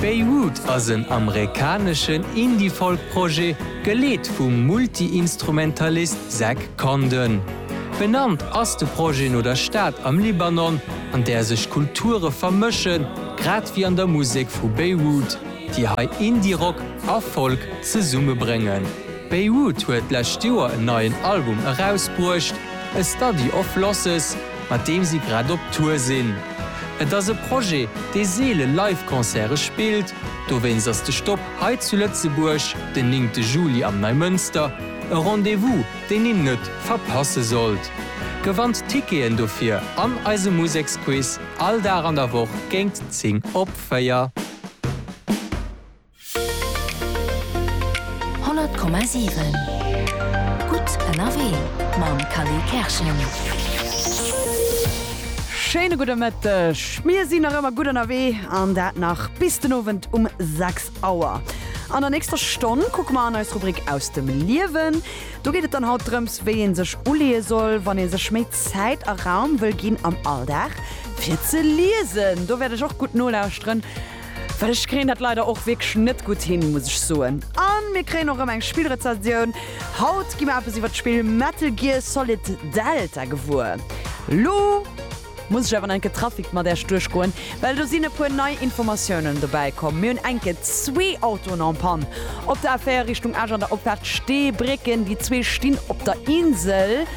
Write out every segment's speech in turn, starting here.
Beirut ass en amerikaneschen Indie-Folk-Projet, geleet vum Multi-Instrumentalist Zach Condon. Benannt ass de Projet no der Stad am Libanon, an där sech Kulture vermëschen, grad wéi an der Musek vu Beirut, déi hei Indie-Rock a Folk zesummebréngen. Beirut huet d'lescht Joer en neien Album erausbruecht, A Study of Losses. mat deem si grad op Tour sinn. Et ass e Projet, dee seele Live-Concerte spillt, dowéinst ass de Stop hei zu Lëtzebuerg den néngte Juli am Neimënster e Rendez-vous, deen een net verpasse sollt. Gewannt d'Ticketen dofir an eisem Museksquiz all Dag an der Woch géingt 10 op 4. 100,7 Gutt ënnerwee mam Kally Kerschen. Schéine gudde Mëtteg. Mir sinn nach ëmmer gutt ënnerwee an dat nach bis den Owend um 6 Auer. An der nächster Stonn kucke mer an eis Rubrik Aus dem Liewen. Do geet et dann haut drëms, wéi ee sech uleeë soll, wann ee sech méi Zäit a Raum wëll ginn am Alldag fir ze liesen. Do wäert ech och gutt nolauschteren. Well ech kréien dat leider och wierklech net gutt hin, muss ech soen. A mir kréien och erëm eng Spillrezensioun. Haut gi mer eppes iwwer d'Spill Metal Gear Solid Delta gewuer. Lo muss ech awer nach enke Trafic mat Äerch duerchgoen, well do sinn e puer nei Informatiounen dobäi komm. Mir hunn enke zwee Autoen en Panne op der A4 Richtung Esch an der Opfaart Steebrécken. Déi zwee stinn op der Insel.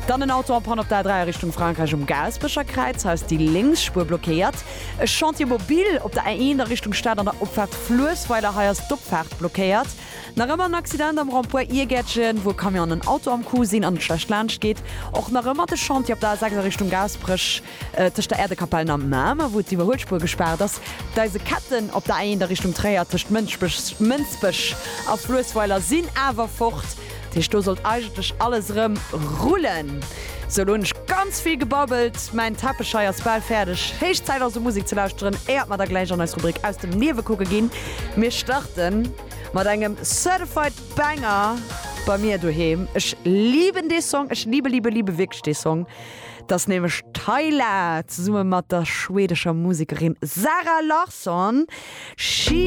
Dann en Auto en Panne op der A3 a Richtung Frankräich um Gaaspecher Kräiz. Hei ass déi lénks Spuer blockéiert. E Chantier mobile op der A1 a Richtung Stad an der Opfaart Fluessweiler. Hei ass d'Opfaart blockéiert. Nach ëmmer en Accident am Rond-point Iergärtchen, wou e Camion an en Auto am Coup sinn an et schlecht laanscht geet. Och nach ëmmer de Chantier op der A6 a Richtung Gaasperech, tëscht der Äerdekapell an Mamer, wou d'Iwwerhuelspuer gespaart ass. D'Eiseketten op der A1 a Richtung Tréier, tëscht Mënsbech a Fluessweiler, sinn awer fort. Dat heescht, do sollt eigentlech alles erëm rullen. Sou, lo hunn ech ganz vill gebabbelt. Mäin Teppech hei ass bal fäerdeg. Héich Zäit also Musek ze lauschteren, éiert mer da gläich an eis Rubrik Aus dem Niewekucke ginn. Mir starte mat engem Certified Banger bei mir doheem. Ech liben dee Song, ech libe, libe, libe wierklech dee Song. Et ass nämlech Tyla zesumme mat der schwedescher Musekerin Zara Larsson, She.